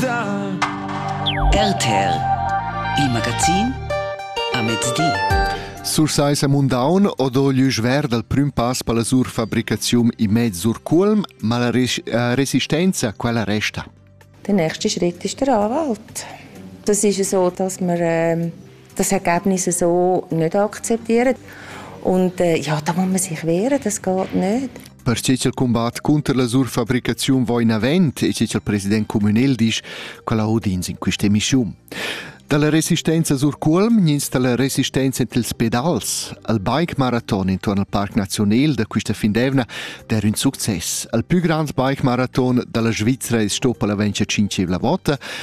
RTL Il magazin a mezdi. Surseis a Mundaun odo glüsch ver dal prüm pass per la sur fabricazium in mezz sur Culm, ma la res äh, resistenza quella resta? Der nächste Schritt ist der Anwalt. Das ist so, dass wir ähm, das Ergebnis so nicht akzeptieren. Und äh, ja, da muss man sich wehren, das geht nicht. Per che il combat contro la surfabricazione va in avanti e che il presidente comunale dice che la audins in questa missione. Dalla resistenza sur Culm ins dalla resistenza entre els pedals. Al bike marathon intorno al Parc Nazional da questa findevna der un succes. Al più grande bike marathon dalla Svizzera è stoppa la vencia cinceivla vota,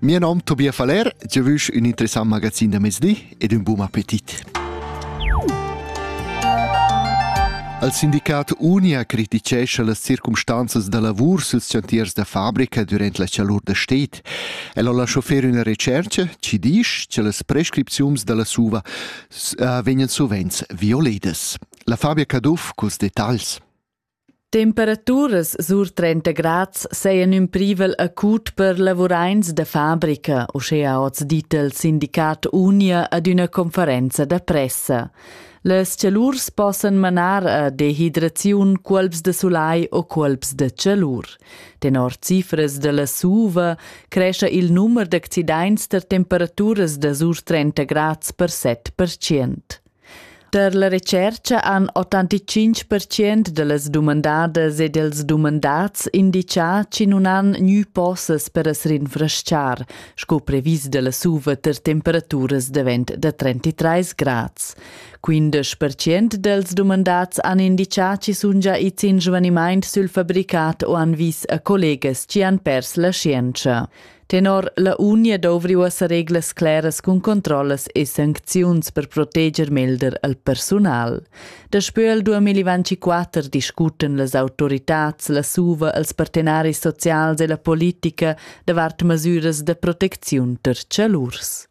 Mio nom Tobias Valer, eu vüsch ün interessant magazin da mezdi ed ün bun appetit. Al sindicat Unia criticescha las circumstanzas da lavur süls chantiers da fabrica durant la chalur da sted. El ho lascho fer üna retschercha chi disch che las prescripziuns da la SUVA eh, vegnan sovents violedas. La Fabia Caduff culs detagls. Temperaturas sur 30 grads sajan ün privel acut per lavuraints da fabrica, uschea hoz dit il sindicat Unia ad üna conferenza da pressa. Las chalurs possan manar a dehidraziun, cuolps da sulai o cuolps da chalur. Tenor cifras da la SUVA crescha il numer d'accidaints tar temperaturas da sur 30 grads per 7%. Per la retschercha han 85 percent da las dumandadas e dels dumandats indichà chi nun han gnü possess per as rinfrestchar, sco previs da la suva ter temperaturas davent da 33 grads. 15 percent dels dumandats han indichà chi sun già its in svanimaint sül fabricat o han vis a collegas chi han pers la scienza. Tenor la unia dovri uossa reglas claras cun controllas e sancziuns per proteger melder al persunal. Daspö il 2024 discuten las autoritats, la SUVA, els partenaris socials e la politica davart masüras da protecziun ter chalurs.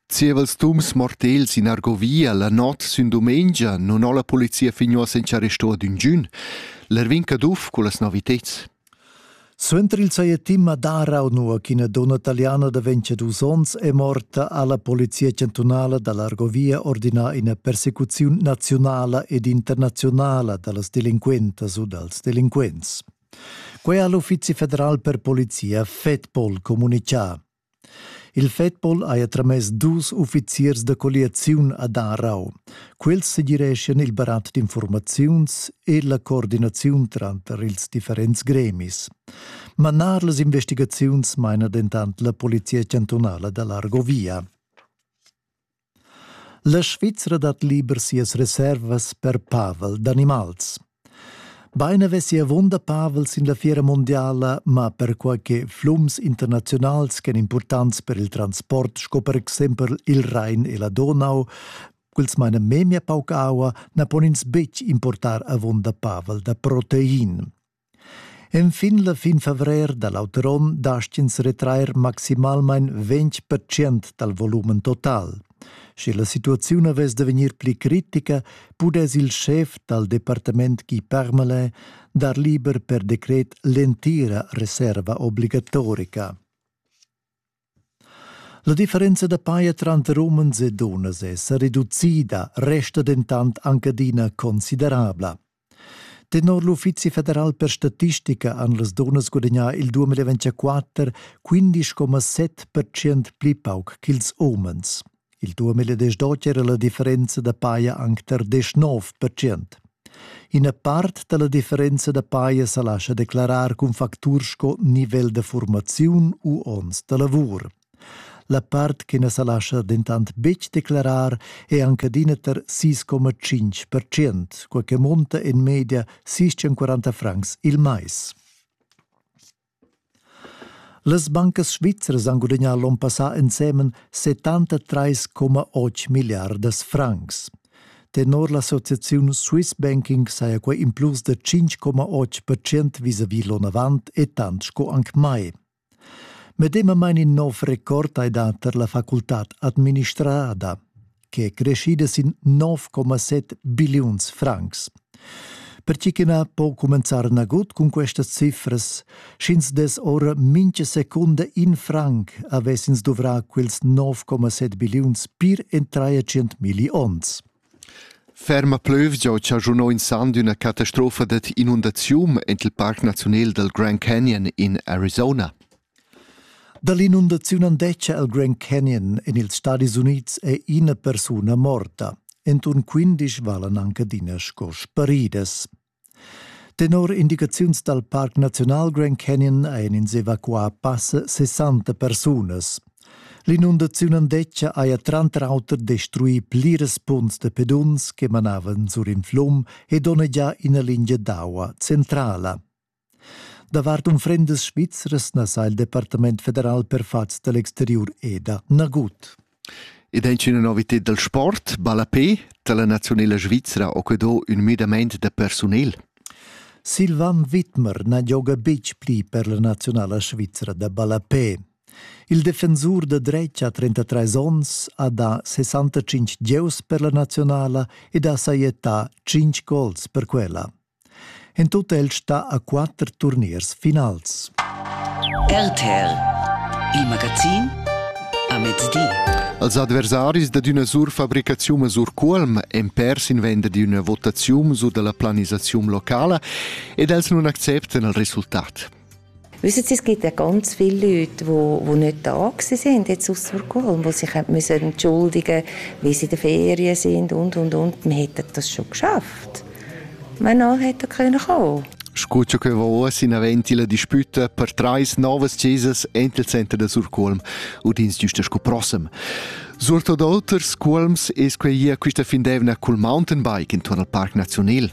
Zievels tums mortels in Argovia la not sün dumengia non ho la polizia fin uossa in arresto ad ün giun. L'Erwin Caduff cu las noviteds. Suenter il sajettim a Darau, nua ch'ina dunna taliana da ventadus onns è morta, ha la polizia chantunala da l'Argovia ordinà ina persecuziun naziunala ed internaziunala da las delinquentas u dals delinquents. Quai ha l'Uffizi federal per polizia FEDPOL communitgà. Il Fedpol haja tramess dus uffiziers da colliaziun ad Aarau. Quels segireschian il barat d'infurmaziuns e la coordinaziun tranter ils differents gremis. Manar las investigaziuns maina dentant la polizia chantunala da l'Argovia. La Svizra dat liber sias reservas per pavel d'animals. Bein avessi avunda pavel sin la fiera mondiala, ma perquai che flums internaziunals ch'en importants per il transport sco per exempel il Rhein e la Donau, quels meina memia pauc aua, na pon ins betg importar avunda pavel da protein. Enfin la fin favrer da l'auter onn dastg'ins retrair maximalmain ventg percent dal volumen total. Sche la situaziun avess da vegnir pli critica, pudess il schef dal departament Guy Parmelin dar liber per decret l'entira reserva obligatorica. La differenza da paja tranter umens e dunnas è sa reducida, resta dentant anc adina considerabla. Tenor l'Uffizi federal per statistica han las dunnas gudagnà il 2024 15,7 percent pli pauc ch'ils umens. Il duamil e desdotg era la differenza da paia anc tar deschnov percent. Ina part da la differenza da paia sa lascha declarar cun facturs sco nivel da formaziun u onns da lavur. La part che na sa lascha dentant betg declarar è anche adina tar 6,5 percent, quai che monta en media 640 francs il mais. Las bancas svizras han gudagnà l'onn passà ensemen 73,8 milliardas francs. Tenor l'associaziun Swiss Banking saja quai in plus da 5,8 percent vis-à-vis l'onn avant e tant sco anc mai. Medemamain in nov record hai dà tar la facultad administrada. che è crescida sin 9,7 billiuns francs. Pertgi che na po cumenzar nagut cun questas cifras, sch'ins dess ora mintga secunda in franc avess ins duvrà quels 9,7 billiuns pir en 300 milli onns. Ferma plövgia chaschunò in sand üna catastrofa dad inundaziun ent il Parc Naziunal del Grand Canyon in Arizona. Dall'inundaziun andescha el Grand Canyon en ils Stadis Unids è ina persuna morta. Entun quindisch valan anc adina sco sparidas. Tenor indicaziuns dal Parc Naziunal Grand Canyon ein ins evacuà passa 60 persunas. L'inundaziun andescha haja tranter auter destruì pliras punts da peduns che manavan sur in flum e donnegià ina lingia d'aua centrala. Davart unfrendas svizras na sa il Departament federal per fats da l'exteriur EDA nagut. Ed è una novità dal sport, ballapé, da la nazionala svizra ho que do ün müdament da personel. Silvan Wittmer na gioga betg pli per la nazionala svizra da ballapé. Il defensur da dretg ha 33 onns, ha da 65 gieus per la nazionala ed ha sajettà 5 gols per quella. En tut el sta a quatter turniers finals. RTL, il magazin a mezdi. Als adversaris da d'üna surfabricaziun sur Cuolm en pers in venda d'üna votaziun sur della planisaziun locala ed els non acceptan il resultat. Wissen Sie, es gibt ja ganz viele Leute, die, die nicht da waren jetzt aus Burgholm, die sich entschuldigen müssen, wie sie in den Ferien sind und, und, und. Man hätte das schon geschafft. Man nachher hätte können kommen Scuccio che va uoss in avanti la disputa per trais novas chesas entro il center da Surculm ed ins giusta sco prossem. Surtot oters culms es quei ia quista fin d'eivna cul mountainbike intorn al Parc Nazional.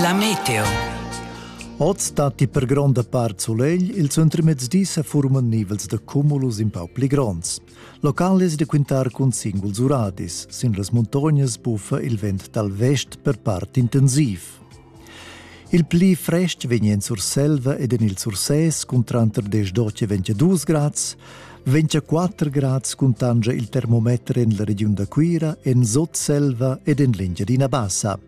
La meteo. Oz datti per gronda part sulegl, il suentermezdi sa furman nivels da cumulus in pau pli gronds. Local es da quintar cun singuls uradis. Sin las muntognas buffa il vent dal vest per part intensiv. Il pli frest vegn en Surselva ed en il Sursès cun tranter 10 e 22 grads. 24 grads cuntanscha il termometer en la regiun da Cuira, en Sotselva ed en l'Engiadina Bassa.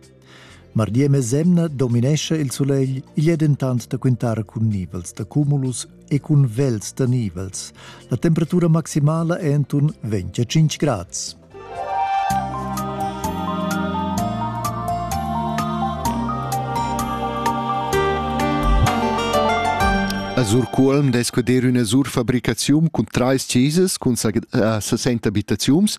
Mardi e mesemna dominescha il sulegl, igl è dentant da quintar cun nivels da cumulus e cun vels da nivels. La temperatura maximala è enturn 25 grads. A Surcuolm dess cuder üna surfabricaziun cun trais chesas cun 60 abitaziuns.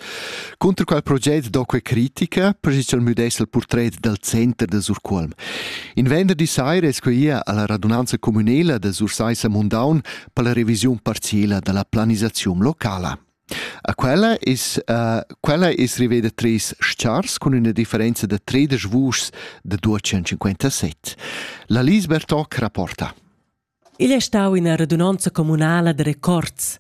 Cunter quel proget do que critica, pregischa'l müdess il portret dal center da Surcuolm. In venderdi saira es que ia alla radunanza communela da Sursaissa Mundaun per la revisiun parziela da la planisaziun locala. A quella es uh, quella es riveda trais s-chars cun üna differenza da tredisch vuschs da 257. La Lise Bertoc rapporta. Igl è stau ina radunanza communala da records.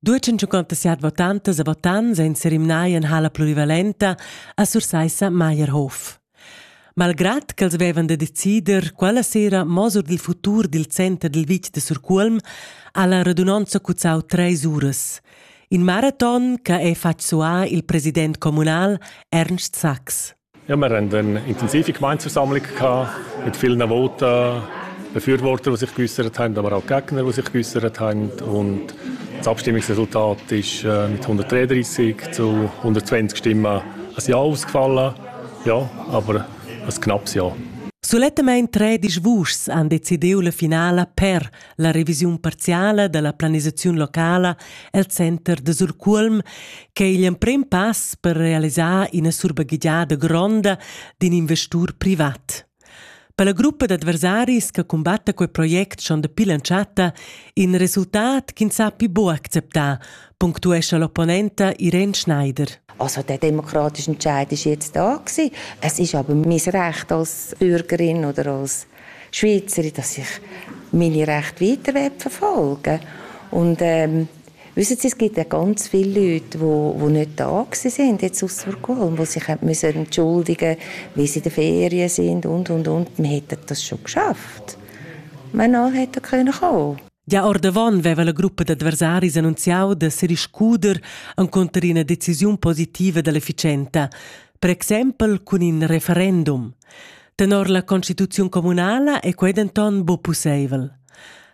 257 votantas e votants ein serimnai en hala plurivalenta a Sursaissa Meierhof. Malgrad ch'els vevan da decider quella sera mo sur dil futur dil center dil vitg de Surcuolm, ha la radunonza cuzzau treis uras. In maraton che ha fatg suar il president communal Ernst Sachs. Ja, wir hatten eine intensive Gemeindeversammlung mit vielen Voten, Befürwortern, die sich geäußert haben, aber auch Gegner, die sich geäußert haben. Und das Abstimmungsresultat ist äh, mit 133 zu 120 Stimmen ein Ja ausgefallen. Ja, aber ein knappes Jahr. Sulettamain tredisch vuschs han decidiu la finala per la revisiun parziala dalla planisaziun locala el center de Surcuolm, che è igl emprem pass per realisar ina surbaghegiada gronda d'in investur privat. Per la gruppa d'adversaris che cumbatta quei project schon dapi l'entschatta in resultat ch'ins ha pli buc acceptà, punctuescha l'opponenta Irene Schneider. Also der demokratische Entscheid ist jetzt da gewesen. Es ist aber mein Recht als Bürgerin oder als Schweizerin, dass ich meine Rechte weiter verfolgen will. Und ähm, Wissen Sie, es gibt ja ganz viele Leute, die, die nicht da waren jetzt aus Stockholm, die sich müssen entschuldigen müssen, weil sie in den Ferien sind und, und, und. Man hätte das schon geschafft. Ma no hätte können kommen. Già ordavon veva la gruppa d'adversaris annunziau da seriscuder encunter ina decisiun positiva dell'efficienza, per exempel cun in referendum. Tenor la constituziun communala è quei denton bu pusseivel.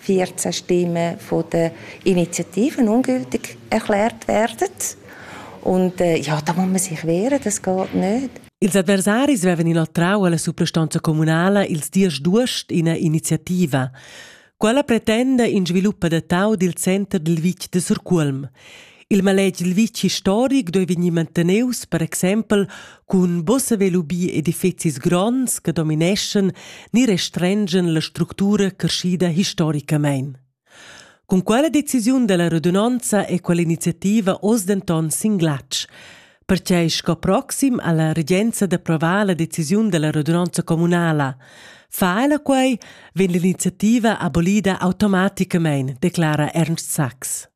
14 Stimmen von den Initiativen ungültig erklärt werden. Und äh, ja, da muss man sich wehren, das geht nicht. Ils adversaris vevan inoltrau alla suprastanza communala ils dies d'uost ina iniziativa. Quella pretenda in sviluppa da tau dil center dil vitg de Surculm. Il maletg il vitg historic doi vegnir manteneus, per exempel, cun bossa velubi edifizis gronds che domineschen ni restrengen la structura crescida historicamein. Con quella decisiun della radunanza e quell'iniziativa oz denton sin glatsch, perché sco proxim alla regenza d'approvar la decisiun della radunanza comunala. Fa ella quei, vegn l'iniziativa abolida automaticamente, declara Ernst Sachs.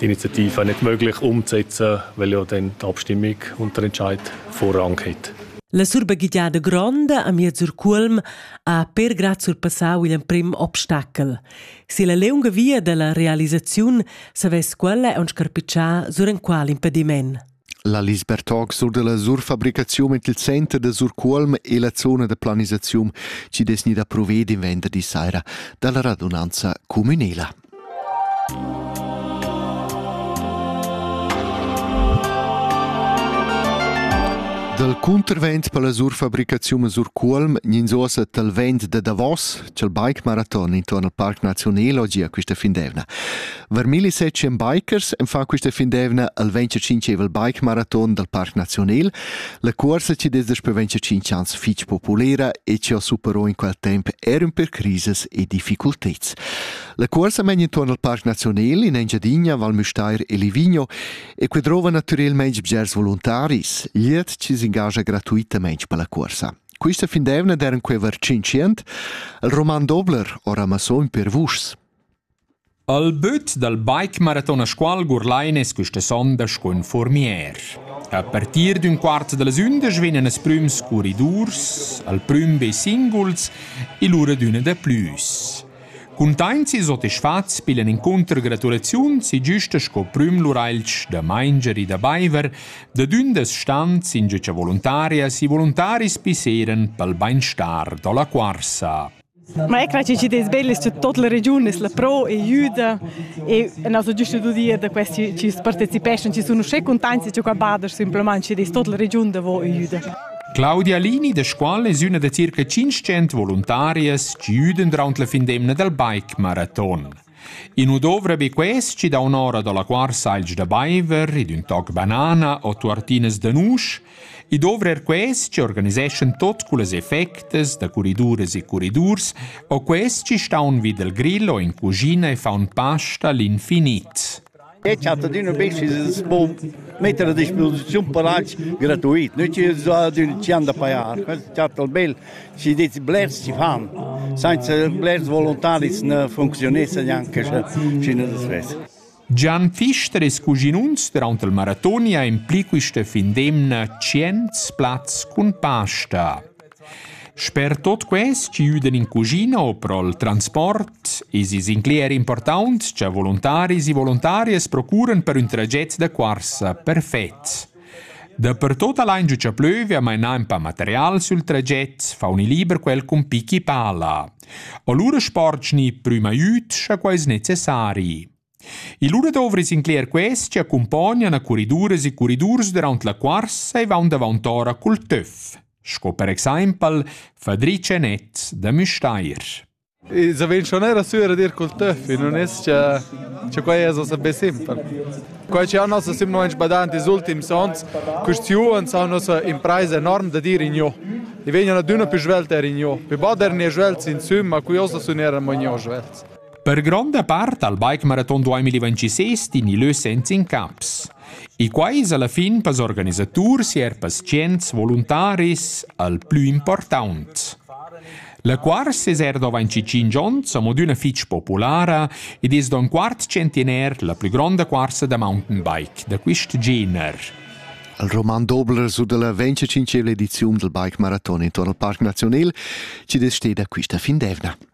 Die Initiative nicht möglich umzusetzen, weil ja dann die Abstimmung und der Entscheid Vorrang hat. La surbagigliada gronda a miez sur Culm ha per grad surpassau igl emprim obstacel. Si la leunga via dalla realisaziun savess quella aunc scarpitschar sur enqual impediment. La Lisbertog sur dalla surfabricaziun ed il center da Surcuolm e la zona da planisaziun chi dess gnir da prover in venderdi saira dalla radunanza cumünela. Dal cuntervent per la surfabricaziun a Surcuolm gnins uossa tal vent da Davos, ch'el bike maraton intuorn al Parc Naziunelo gia quista fin d'eivna. Var milli secen bikers en fa quista fin d'eivna al 25evel bike maraton dal Parc Naziunel, la cuorsa chi dess daspö 25 ans fich populera e chi ho supero in quel temp er ün per crises e difficulteds. La cuorsa men intuorn al Parc Naziunel in Engiadina, Val Müstair e Livigno e que drova natürelmaing bgers voluntaris, glied chi s'ingagia gratuitamaing per la cuorsa. Quista fin d'eivna d'eran queva tschinchient, il roman Dobler ora masson per vuschs. Al büt dal bike maraton a Scuol Gurlain es quista sondas cun Furmier. A partir d'ün quart da las ündesch vegnan as prüms curridurs, al prüm be singuls e lura d'üna da plüs. Cuntaints e sotisfats pillan incunter gratulaziuns e güsta sco prüm lur ailch da manger e da baiver, da dündas stans ingiütscha voluntarias e voluntaris pisseiran pel bainstar da la cuorsa. Ma ecco che ci des belli su tutta la regione la pro e juda e nos giusto due dire da questi ci partecipation ci sono sche contenti che qua bader simplemente ci des tutta la regione da vo e juda Claudia Lini da Scuol es üna da circa tschinchent voluntarias chi üdan duraunt la fin d'emna dal bike maraton. In nu dovra be quest chi dà un'ora da la quar salsch da baiver ed ün toc banana o tuartinas da nusch, i dovra er quest chi organiseschan tot cullas effectas da curriduras e curridurs o quest chi staun vi dal grill o in cuschina e faun pasta l'infinit. Ei chat adüna be schi's po metter a disposiziun palazs gratuit, nu chi so adüna chi han da pajar. Quels chattan bel, schi dets blers chi fan. Sainza blers voluntaris na funcziunessan gnanca schi na svess. Gian Pfister e cuginuns durant il maratoni ha impli questa fin d'emna tschient plazs cun pasta. Sper tut quels chi üdan in cuschina o pro'l transport esa sincler important cha voluntaris e voluntarias procuran per ün traget da cuorsa perfet. Dapertut al hain giuchà plüvia mainà ün pa material sül traget, fauni liber quel cun pichi pala. O lura spordschi prüma üt scha quai es necessari. E lura dovri incler quests che accumpognan a curriduras e curridurs durant la cuorsa e vaun davant'ora cul töf, sco per exaimpel Fadric e Net da Müstair. I savein schon era sura dir cul töf, non es-cha che quai es sabe simpel. Quai che han nossa simplesmente badant ils ultims onns, questiuns han nossa impresa enorm da dire in jo. I vegnan adüna più svelta er in jo. Più bader ne svelts insomma, qui ossa sun era magno svelts. Per gronda part al bikemaraton 2026 din il lö senza incaps. E quai es alla fin pels organisaturs e er pazients voluntaris al plü important. La cuors es er dovant 5 ons amo d'üna fich populara ed es don quart centener la plü gronda cuorsa da mountain bike da quist gener. Al Roman Dobler su dalla 25 ediziun del Bike Marathon intorno al Parc Nazional ci desceda quista fin d'evna.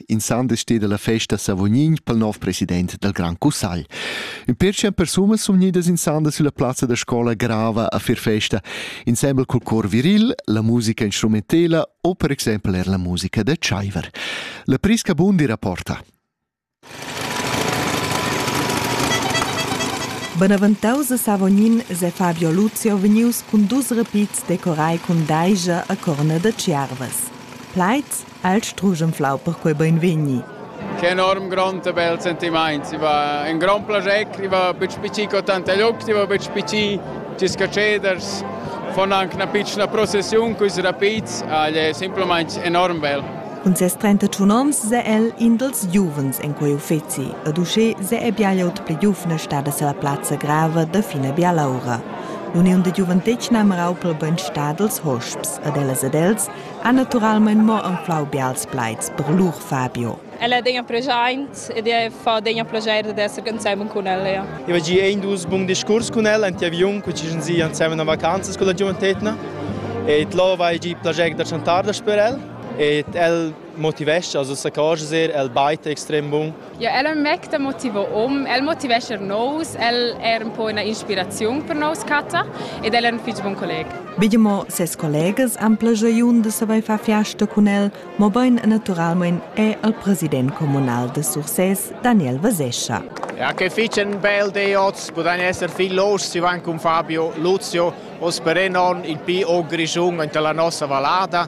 insande steda la festa Savognin pel nov president dal Grand Cussagl. Ün pertschient persunas sun gnidas insande sulla plazza da scola grava a fir festa, insembel cul cor viril, la musica instrumentela o per exempel er la musica da Tschaiver. La Prisca Bundi rapporta. Benaventaus a Savognin se Fabio Luzio vegnius cun dus repits decorai cun daija a corna da Tschiervas. Plaids El struschenflau perquei beinvegni. Che enorm grond e bel sentimaint, i va un grand plager, i va betg pici co tanta lloc, i va betg pici gis catscheders, von anche una piccola processione cui rapits, agl è semplamain enorm bel. Cun ses 31 ons se el in dels giuvens in quei uffeci ed usché se è bialaut pli giuvna stada se la plazza grava da fina bialaura. L'uniun de giuventetgna merau pel bön stadels hosps ed ellas ed els ha naturalmein mo anflau bials plaids per lur Fabio. Ella degna preschaint ed e fa degna plaschair d'esser ensemen cun ella. Ja. Eu ha gi ein dus bun discurs cun ella ante aviun, cu ci sun si ensemen a vacanzas con la giuventetna. Et lo vai gi plaschair da chantar da per el. Et el motivescha, also sa cosas er, el baita extrem bun Ja, el è ün mec da motiver hom. El motivescha nous, el è ün po üna inspiraziun per nous catta ed el è ün fich bun colleg. Begimo ses collegas han plagiaun da savair far fiasta cun el, mobain naturalmain è el president communal de Sursès, Daniel Vasescha. Ja, che fich ün bel di oz, podain esser viel los si van cun Fabio Luzio, o speré non il pi o grischun enta la nossa vallada.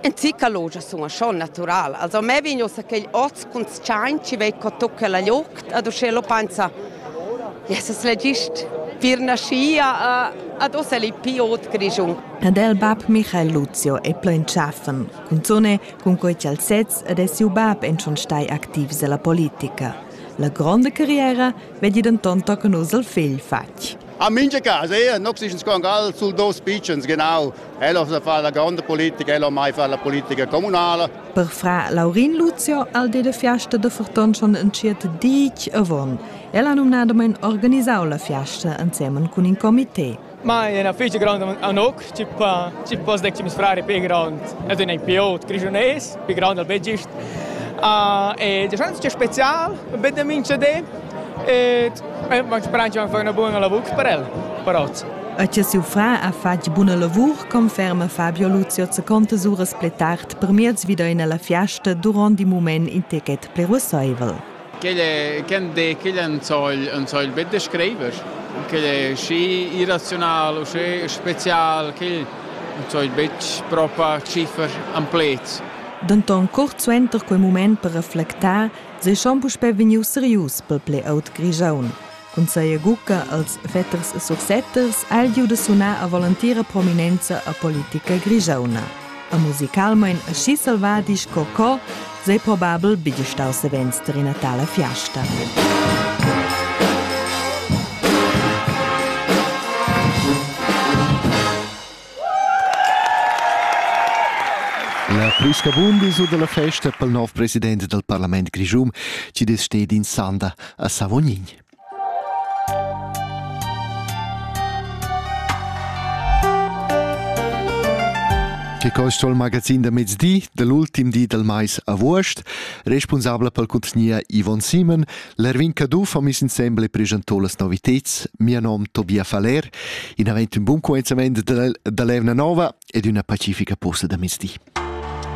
En Zicalogia sun sco natural. Also a me vegn ussa quegl oz cuntschaint chi vei co tucca la liucht ad uschè lo pensa. Jesus l'he gist pir naschia ad ussa l'he pii ot grischun. Ed el bab Michael Luzio è plo in tschaffen, cunzone cun quei ch'el sez ed è siu bab en schon stai activs ella politica. La gronda carriera vedi denton tochen uss il figl fatg. A mincha casa, er, nox ischens congal sul dos pitschens, genau. Ella sa fa la gronda politica, ella mai fa la politica communala. Per fra Laurin Luzio al de de fiasta de Forton schon entschiet dic avon. Ella numnadamein organisau la fiasta ensemen cun in comité. Ma è una festa grande a Noc, tipo, tipo dec ci frari più grande, ed è più aut grigiunese, più grande al vegist. Uh, e diciamo che è speciale, vedem in CD, E m'experientscha fa üna buna lavur per el, però. E che siu fra ha fatg buna lavur, conferma Fabio Luzio Zacontas uras pli tard per miez vida in la fiasta durant in moment in ticket preruessaivel. Quel de quel en soll en soll bet de schreiber. Quel schi irraziunal u schi spezial quel en soll betg propa ciffer am plets. Denton curt suenter quei mument per reflectar seschan puspè vegnius serius pel ple aut Grischun. Cun seia gucca als fetters e sursetters ha il giu da sunar a volantira prominenza a politica grigiauna. A musicalmain aschi selvadi sco co, sei probabel bigl stau savens ter ina tala fiasta. La plü scabunda esa da la festa pel nouv president dal parlament grischun chi dess sted in sanda a Savognin. Che quist ho il magazin da mezdi, dall'ultim di dal mais avuost, respunsabla pel cuntgnier Ivon Simon, L'Erwin Caduff ha mis insembel e presentò las novitads Mia nom Tobia Faller, in avent un buon coenzament da l'Evna Nova ed una pacifica posta da mezdi.